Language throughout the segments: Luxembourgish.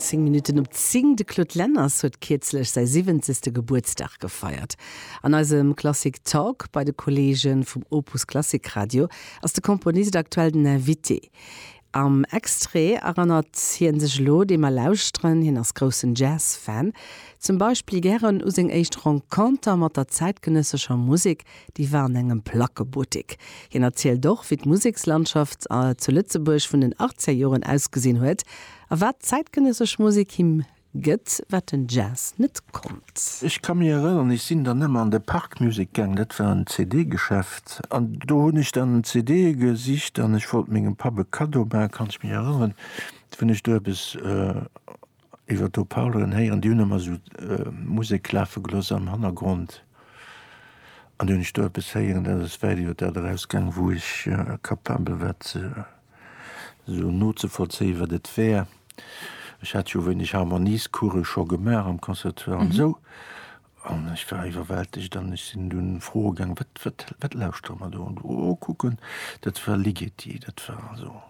Zéng Minutten op zéng, De Claude Lenners huet kierzlech säi siwwenzegste Gebuertsdag gefeiert. An eisem Klassik Talk bei de Kolleege vum Opus Klassik Radio ass de Komponist aktuell den Invité. Am Extrait erënnert hie sech elo, dee mer lauschteren. Hien ass groussen Jazz-Fan, zum Beispill gären u seng éischt Renconter mat der zäitgenëssescher Musek. Déi war an engem Plackebuttek. Hien erzielt och, wéi d'Musekslandschaft zu Lëtzebuerg vun den Achtzegerjoren ausgesinn huet a wat zäitgenëssesch Musek him gëtt, wat den Jazz net konnt. Ech ka mir erënnern, ech sinn dann ëmmer an de Park Music gaang, dat war en CD-Geschäft, an do hunn ech dann CDe gesicht an ech wollt mengem Papp e Kaddo maachen, kann ech mech erënneren, wou ech do eppes. Iwwer d'Haut Parleren héieren, déi hunn ëmmer esou Musek lafe gelooss am Hannergrond an déi hunn ech do eppes héieren, dat ass wäit iwwer dat erausgaang, wou ech capabel war ze esou nozevollzéien, wat et wär. Ech hat jo e wéineg Harmoniescoure scho gemaach am Conservatoire an esou an ech war iwwerwältegt an ech sinn dunn froe gaang, wat, wat, wat lauschtere mer do? An oh, kucken, dat war Ligeti, dat war also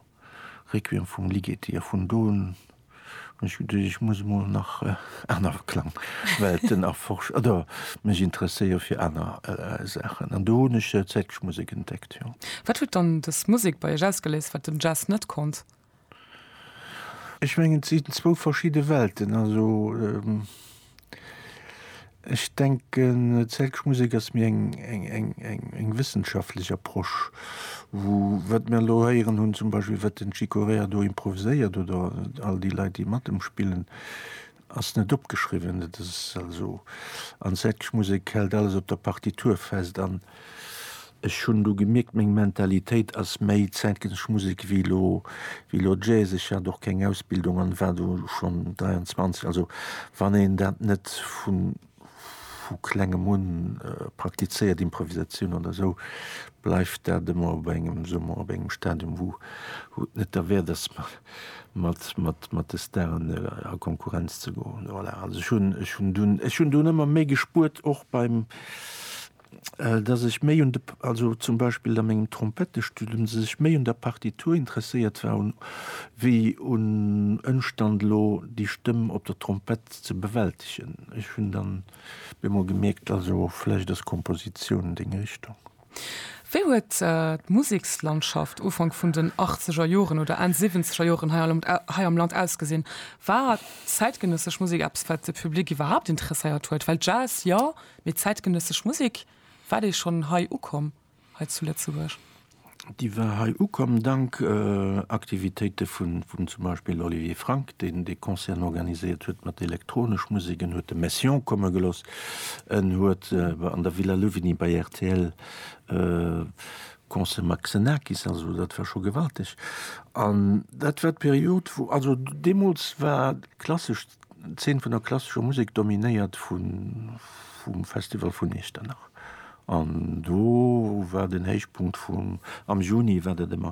Requiem vum Ligeti a vun do un Ech hu geduecht, ech muss emol nach aner Klangwelten erforschen oder mech interesséiere fir aner Saachen. An do hunn ech zäitlech Musek entdeckt, jo. Wat huet dann dës Musek bei Iech ausgeléist, wat den Jazz net konnt? Ech mengen, et sinn zwou verschidde Welten. Also. Ech denken zäitleche Musek ass méi eng wëssenschaftlech Approche, wou wat mir elo héieren hunn, zum Beispill wat den Chick Corea do improviséiert oder all déi Leit déi mat em spillen, ass net opgeschriwwen. Dat ass also an zäitleche Musek hält alles op der Partitur fest an. Ech hunn du gemierkt, meng Mentalitéit ass méi zäitgenëssesch Musek wéi lo, wéi lo Jazz. Ech hat och keng Ausbildung an war do schonn 23. Also wann een dat net vu vu klengem un praktizéiert, Improvisatioun oder esou, bleift dat ëmmer op engem, soe mer, op engem Stadium, wou wou et net derwäert ass mat mat mat de Staren a Konkurrenz ze goen. Voilà, also ech hunn ech hunn dunn ech hunn dunn ëmmer méi gespuert och beim dass ech méi un de, also zum Beispill a mengem Trompettestudum, dass ech méi un der Partitur interesséiert war un, wéi un Ëmstand elo déi Stëmm op der Trompett ze bewältegen. Ech hunn dann bemol gemierkt, also vläicht ass Kompositioun deng Richtung. Wéi huet d'Musekslandschaft Ufank vun den achtzeger Joren oder Enn siwwenzeger Joren hei am Land ausgesinn? War zäitgenëssesch Musek eppes, wat de Public iwwerhaapt interesséiert huet? Well Jazz, jo, Mee zäitgenëssesch Musek, war déi schonn hei ukomm, hei zu Lëtzebuerg? Déi war hei ukomm dank Aktivitéite vun vum zum Beispill Olivier Frank, deen dee Concerten organiséiert huet mat elektronesch Musek. En huet de Messiaen komme gelooss, en huet an der Villa Louvigny bei rtl e Concert mat Xenakis, also dat war scho gewalteg. An dat war d'Period, wou, also deemools war klassesch. D'Zeen vun der klassescher Musek dominéiert vun vum Festival vun Iechternach an do war den Héichpunkt vum am Juni war dat ëmmer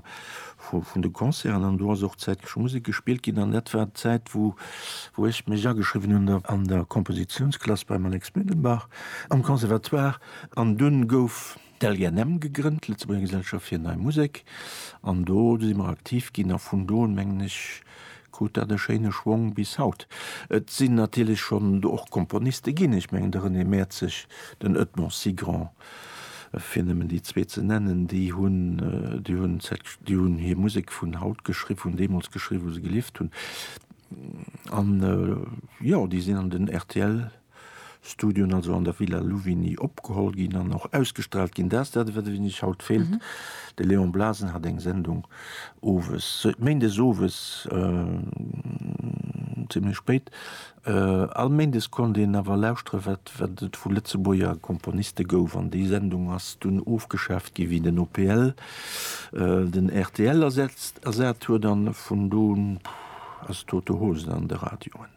vu vun de Concerten an do ass och zäitgesche Musek gespillt ginn an dat war d'Zäit wou wou ech mech ageschriwwen hunn der an der Kompositiounsklass beim Alex Mündenbach am Conservatoire an dunn gouf d'LGNM gegrënnt, Lëtzebuerger Gesellschaft fir Nei Musek, an do si mer aktiv ginn a vun do un, mengen ech, krut dat e schéine Schwong bis haut. Et sinn natierlech schonn do och Komponiste ginn, ech mengen de René Mäerzeg, den Edmond Cigrand, fir nëmmen déi zwee ze nennen, déi hunn, déi hunn cette, déi hunn hir Musek vun haut geschri, vun deemools geschriwwen, wou se gelieft hunn, an jo, déi sinn an den RTL. Studioen also an der Villa Louvigny opgeholl ginn an och ausgestraalt ginn. Dat ass dat, wat et iech haut feelt. De Léon Blasen hat eng Sendung owes, méindes owes zimlech spéit, all méindes konnt een awer lauschteren, wat et vu Lëtzebuerger Komponiste gouf. An déi Sendung ass dunn ofgeschaaft ginn, wéi den OPL den rtl ersat huet. An vun do un ass tote Hose an de Radioen.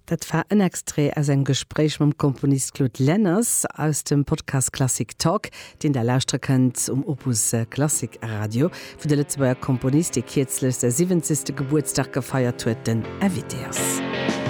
Dat war en Extrait aus engem Gespréich mam Komponist Claude Lenners aus dem Podcast Klassik Talk, deen der lauschtere kënnt um Opus Klassik Radio, wou de Lëtzebuerger Komponist, dee kierzlech säi siwwenzegste Gebuertsdag gefeiert huet, den Invité ass.